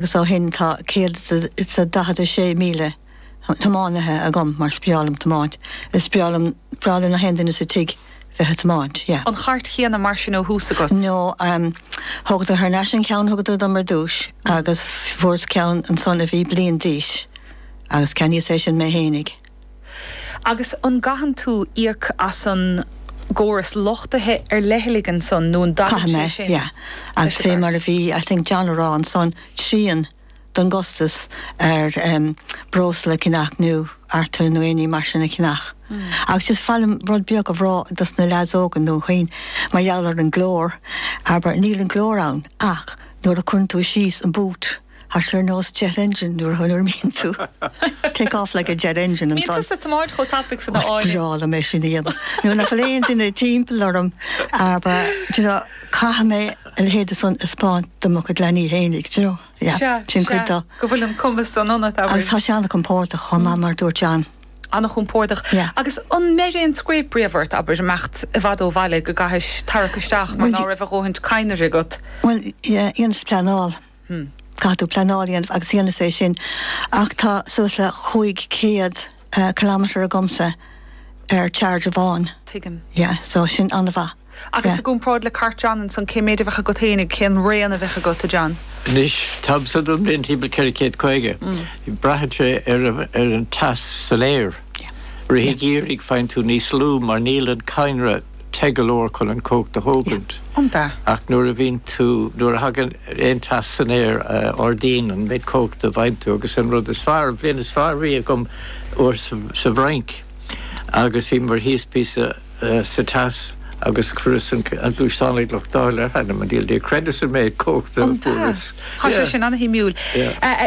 agus ó shin tá 146,000 tiománaithe agam mar is breá liom tiomáint, is breá liom, breá le na haon duine sa tigh bheith ag tiomáint, yeah. an chairt chéanna mar sin ó thús agat? No, em, thógadar thar n-ais an ceann thugadar dom ar dtús agus fuaireas ceann ansan a bhí bliain d'aois agus ceannaíos é sin mé fhéinig. Agus an gcaitheann tú íoc as an gcóras luchtaithe ar leithligh ansan nó an dtagann sé sin leis an gcairt? Caithfidh mé, yeah. Agus fé mar a bhí, I think, John ag rá ansan, trian don gcostas ar breosla a cheannach nó artola nó aon ní mar sin a cheannach. Agus just ba mhaith liom rud beag a rá dos na leaids óga nó dhaoine mar gheall ar an glór, abair níl an glór ann ach nuair a cuireann tú síos an boot, Tá sé ar nós jet engine nuair a imíonn tú. Take off like a jet engine ansan. Bíonn tusa ag tiomáint chomh tapaidh san a fhágann. Is breá liom é sin a dhéanamh. Nuair nach bhfuil aon duine timpeall orm, caithfidh mé a leithéid san a thaispeáint do mo chuid leanaí fhéinig. Sin cuid de. Go bhfuil an cumas san ionat, amhail. Agus tá sé an-chompordach chomh maith mar a dúirt John. An-chompordach. Agus an mbeireann sé gairid riamh ort, abair, imeacht i bhfad ó bhaile go gcaithis tarrac isteach mar ná raibh do dhóthain cadhnra agat? Bhuel, dheineas pleanáil. Caithfidh tú pleanáil a dhéanamh agus dheineas é sin ach tá suas le cúig chéad kilometre agamsa ar charge amháin. Tuigim. Yeah, so sin an-mhaith. Agus i gcomparáid le cairt John ansan, cé méid a bheadh agat fhéinig, cén raon a bheadh agat, a John? Anois, tá bus agam bíonn timpeall ceithre chéad caoga. Braitheann sé ar an teas san aer. Rith an gheimhridh faigheann tú níos lú mar níl an cadhnra te go leor chun an chumhacht a thógaint, ach nuair a bhíonn tú, nuair a thagann aon teas san aer ardaíonn an méid cumhachta a fhaigheann tú agus an rud is fearr, an bhliain is fearr a bhí agam uair sa bhFrainc agus bhíomar thíos píosa sa teas agus chuireas an gluaisteán ag luchtáil ar th'anam 'on diabhal, níor chreideas an méid cumhachta a fuaireas. Tá sé sin an-shuimiúil.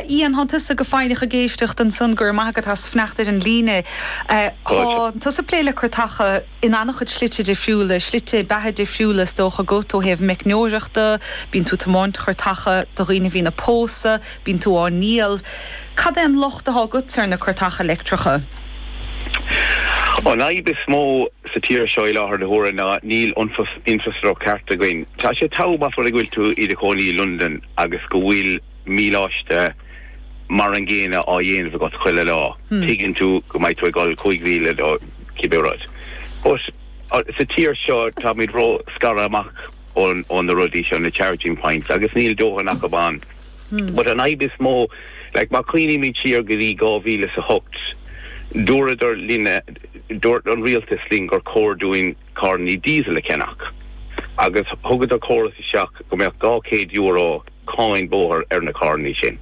Ian, thán tusa go foighneach ag éisteacht ansan, go raibh maith agat as fanacht ar an líne. Thá tusa ag plé le cairteacha. in an-chuid slite difriúla, slite beatha difriúla is dócha agat ó thaobh meicneoireachta, bíonn tú ag tiomáint cairteacha do dhaoine a bhíonn ag pósadh, bíonn tú á ndíol. Cad é an locht atá agatsa ar na cairteacha leictreacha? An fhadhb is mó sa tír seo i láthair na huaire ná níl infreastruchtúr ceart againn. Tá sé togha más amhlaidh go bhfuil tú i do chónaí i Londain agus go bhfuil míleáiste, mar an gcéanna á dhéanamh agat chuile lá, tuigeann tú go mbeidh tú ag dul cúig mhíle nó cibé rud. But sa tír seo táimid ró-scartha amach ó na rudaí seo, na charging points, agus níl dóthain acub ann. But an fhadhb is mó, like má chuimhnímid siar go dtí dhá mhíle is a hocht, dúradar linne, dúirt an rialtas linn gur chóir dúinn carrannaí diesel a cheannach agus thugadar córas isteach go mbeadh dhá chéad euro, cáin bóthair ar na carrannaí sin.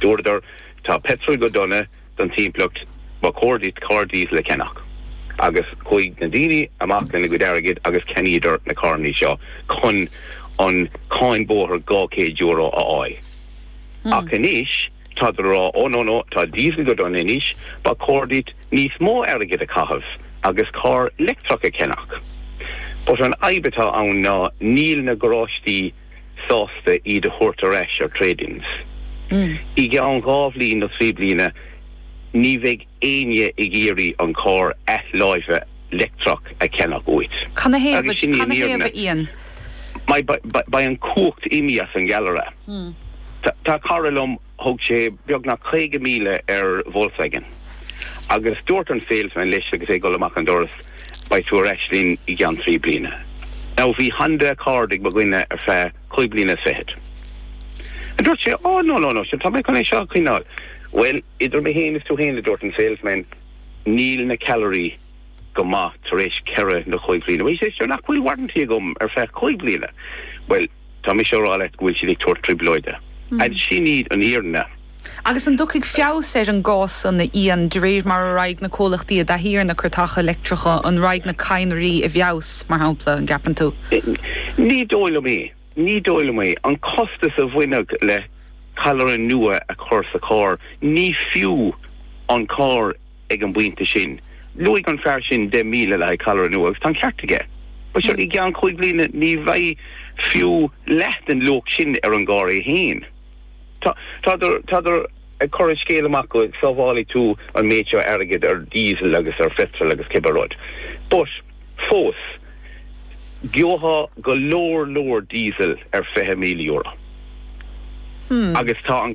Dúradar, Tá peitreal go dona don timpeallacht, ba chóir duit carr díosal a cheannach. Agus chuaigh na daoine amach lena gcuid airgid agus cheannaíodar na carrannaí seo chun an cháin bóthair €200 a fháil. Ach anois tádar a rá, Oh no no, tá díosal go dona anois, ba chóir duit níos mó airgid a chaitheamh agus carr leictreach a cheannach. But an fhadhb atá ann ná níl na garáistí. sásta iad a thabhairt ar ais ar trade-ins. I gceann dhá bhliain nó trí bliana, ní bheidh éinne ag iarraidh an charr athláimhe leictreach a cheannach uait. Canathaobh, agus sin í an fhírinne. Canathaobh, a Ian. Beidh an cumhacht imithe as an gceallra. Tá cara liom. Thug sé beagnach 50,000 ar Volkswagen agus dúirt an salesman leis agus é ag dul amach an doras, Beidh tú ar ais linn i gceann trí bliana. Now bhí Honda Accord ag mo dhuine ar feadh cúig bliana is fichead. And dúirt sé, Oh no, no, no, sin, tá mé chun é seo a choinneáil. Bhuel, idir mé féin is tú féin, a dúirt an salesman, níl na ceallraí go maith tar éis ceithre nó cúig bhliana. He says, Sure, nach bhfuil warranty agam ar feadh cúig bliana? Bhuel. Tá mise ag rá leat go bhfuil siad ag tabhairt trioblóide. An sin í an fhírinne? Agus an dtiocfaidh feabhas ar an gcás san a Ian, de réir mar a raghaidh na comhlachtaí i dtaithí ar na cairteacha leictreacha? An raghaidh na cadhnraí i bhfeabhas, mar shampla, an gceapann tú? Ní dóigh liom é. Ní dóigh liom é. An costas a bhainfeadh le ceallra nua a chur sa charr, ní fiú an carr. ag an bpointe sin, luaigh an fear sin 10,000 le haghaidh ceallra nua agus tá an ceart aige. Mar seo, i gceann cúig bhliana ní bheidh fiú leath den luach sin ar an gcarr é féin. Tádar, tádar ag cur an scéil amach go sábhálfaidh tú an méid seo airgid ar Diesel agus ar Phetrol agus cibé rud. But, fós, gheobhthá go leor leor Diesel ar €20,000. Agus tá an.